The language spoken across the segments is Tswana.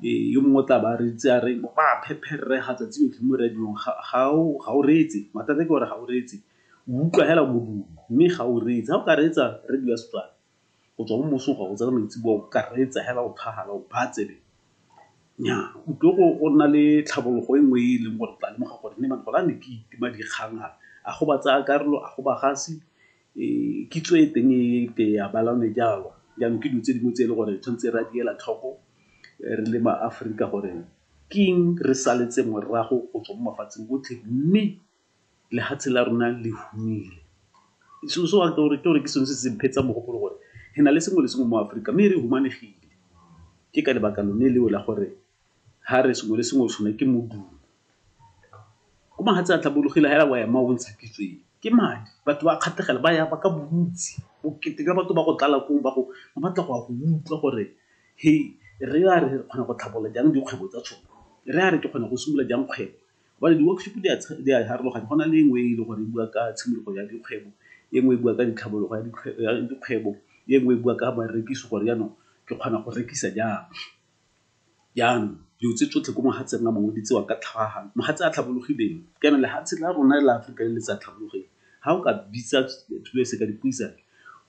Ee, yo mongwe o tla ba a reeditse a re, ba a phepherrega tsatsi lotlhe mo radiong, ga o reetse. Mathata ke gore ga o reetse, o utlwa fela modumo mme ga o reetse. Ga o ka reetsa radio ya Setswana go tswa mo mosong go ya go tsena maitseboa, o ka reetsa fela o thagala, o baya tsebe, nnyaa o tlile go nna le tlhabologo e nngwe e e leng gore o tla lemoga gore gone jaanong ke itima dikgang a, a go batsaya karolo, a go bagasi, Kitso e teng e ke ya bala gone jalo, jaanong ke dilo tse dingwe tse e le gore tshwanetse re a di ela tlhoko re le maAforika gore ke eng re saletse morago go tswa mo mafatsheng otlhe, mme lefatshe la rona le humile. So gore ke sone se se mphetsa mogopolo gore re na le sengwe le sengwe mo Aforika mme re humanegile, ke ka lebaka lone leo la gore. ha re sengwe le sengwe o tshwanelwa ke modumo. Ko mahatshe a tlhabologile hela wa ema o ntsha kitso e, ke madi. Batho ba kgatlhegela, ba ya ba ka bontsi, bokete jwa batho ba go tlala koo ba batla go ya go utlwa gore re a re kgona go tlhabolola jang dikgwebo tsa tshone, re a re ke kgona go simolola jang kgwebo. Jwale di-workshop di a harologana, go na le e nngwe e leng gore e bua ka tshimologo ya dikgwebo, e nngwe e bua ka ditlhabologo ya dikgwebo, e nngwe e bua ka barekisi gore jaanong ke kgona go rekisa jang. Jaanong, dilo tse tsotlhe ko mohatseng wa mongwe di tsewa ka tlhagahalo. Mohatse a tlhabologileng kana lehatshe la rona la Aforika le le sa tlhabologeng, ha o ka bitsa selo se ka dipuisano,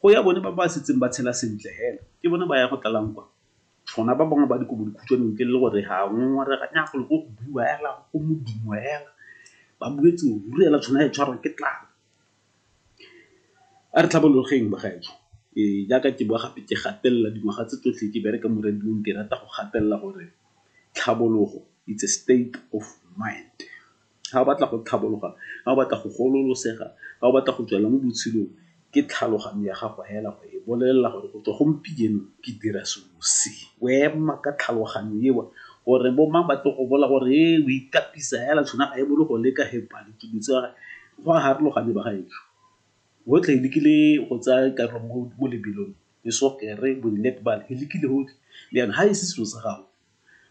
go ya bone ba ba setseng ba tshela sentle fela. Ke bone ba yang go tlalang kwa, rona ba bangwe ba dikobodikhutshwane ntle le gore re a ngongorega, nnyaa golo ko go buiwa fela, go modumo fela, ba buetse o ruri fela tshwana e tshwarwa ke tlala. A re tlhabologeng bagaetsho. Ee, jaaka ke bua gape ke gatelela dingwaga tse tsotlhe ke bereka mo radio-ng ke rata go gatelela gore tlhabologo it's a state of mind. Ga o batla go tlhabologa, ga o batla go gololosega, ga o batla go tswela mo botshelong ke tlhaloganyo ya gago fela go e bolelela gore go tswa gompieno ke dira selo se. O ema ka tlhaloganyo eo gore bo mang ba tle go bolela gore o ikatisa fela tshwenya ga e bolo go leka . Go a harologane bagaetsho. Botlhe re lekile go tsaya karolo mo mo lebelong, le sokere, bo di-netball, re lekile gotlhe. Jaanong ga e se selo sa gago,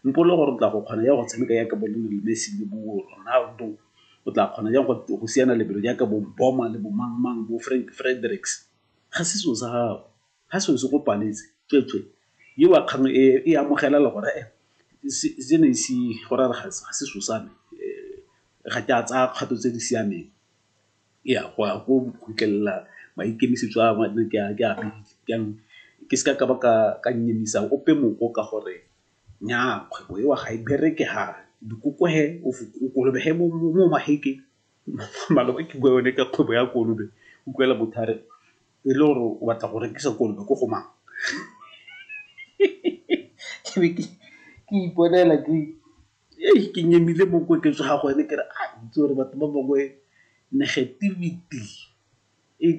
mpolele gore o tla go kgona jang go tshameka jaaka bo Lionel Messi le bo Ronaldo, o tla kgona jang go siana lebelo jaaka bo Mboma le bo mang-mang, bo Frank Fredericks. Ga se selo sa gago. ga se o se kopanetse tsweetswe yo wa kgang e e amogela le gore se ne se go ra ga se so sa me ga ke a tsaya kgato tse di siameng ya go ya go khutlelela maikemisetso a ne ke a jaanong ke se ka ka ba ka ka nyemisa ope moko ka gore nyaa kgwebo e wa ga e bereke ha dikoko he o kolobe he mo maheke maloba ke bua yone ka kgwebo ya kolobe utlwela motho a re e le gore o batla go rekisa kolobe ko go mang ke be ke iponela ke ee ke nyemile mo ko ke tsoga go ene ke re a itse gore batho ba bangwe negativity e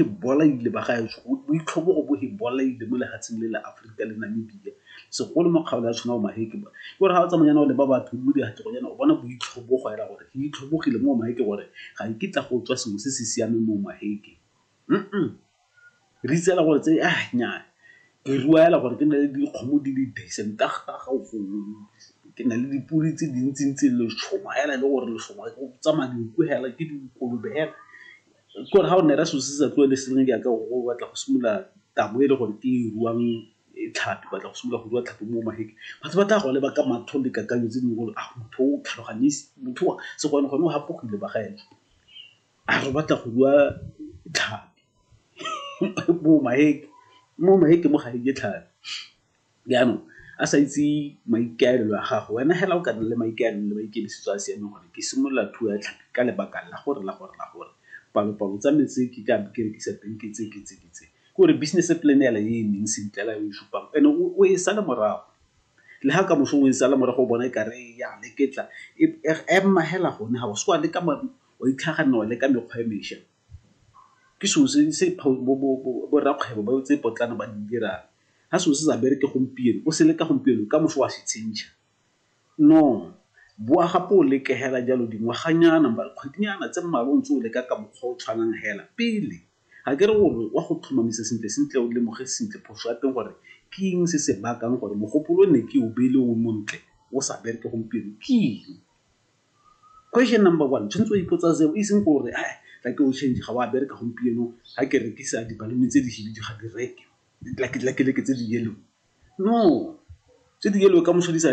e bolaile ba gaetsho boitlhobo go bo e bolaile mo lefatsheng le le Aforika le Namibia segolo mo kgaolo ya tshwana o maheke ba ke gore ga o tsamaya o leba batho mo diatlego yana o bona boitlhobo go ela gore ke itlhobogile mo maheke gore ga e kitla go tswa sengwe se se siameng mo maheke. Re itseela gore tse nyaa, ke rua fela gore ke nne le dikgomo di le decent ka gongwe, ke nne le dipodi tse dintsi-ntsi, lešoma fela e le gore lešoma go tsamaya dinku fela, ke dikolobe fela. Ke gore fa o nne ra selo se sa tlogeleng se sengwe jaaka o batla go simolola taba e le gore ke e ruang tlhapi, o batla go simolola go rua tlhapi mo magetleng, batho ba tla go leba ka matlho le dikakanyo tse dingwe gore a motho o tlhaloganyeng, motho o a, segone-gone o gapogile bagaetsho. a re o batla go rua tlhapi bo maeke, mo maeke mo ga reke tlhapi. Jaanong a sa itse maikaelelo a gago wena hela o ka nna le maikaelelo le maikemisetso a a siameng gore ke simolola thuo ya tlhapi ka lebaka la gore la gore la gore palo-palo tsa me tse ke ka ke rekisa teng ke tse ke tse ke tse. Ke gore business plan hela e emeng sentle hela e o e supang and o e sale morago le ha kamoso o e sala morago o bona e kare ya leketla ema hela gone ga o se wa leka wa itlhaganelwa le ka mekgwa e mesha. Ke selo se borrakgwebo ba tse potlana ba di dirang. Ha selo se sa bereke gompieno, o se leka gompieno, ka moso wa se change-a. No, boa gape o leke hela jalo dingwaganyana, mara kgwedinyana tse mmalwa o ntse o leka ka mokgwa o tshwanang hela, pele. Ga ke re o re wa go tlhomamisa sentle-sentle, o lemoge sentle phoso ya teng gore ke eng se se bakang gore mogopolo o ne ke o beile o montle, o sa bereke gompieno, ke eng? Question number one, tshwanetse o ipotsa seo e seng gore a tla ke o change ga wa bereka gompieno ga ke rekisa dibalone tse di hibidu ga di reke, like tse di yellow. No, tse di yellow kamoso di sa .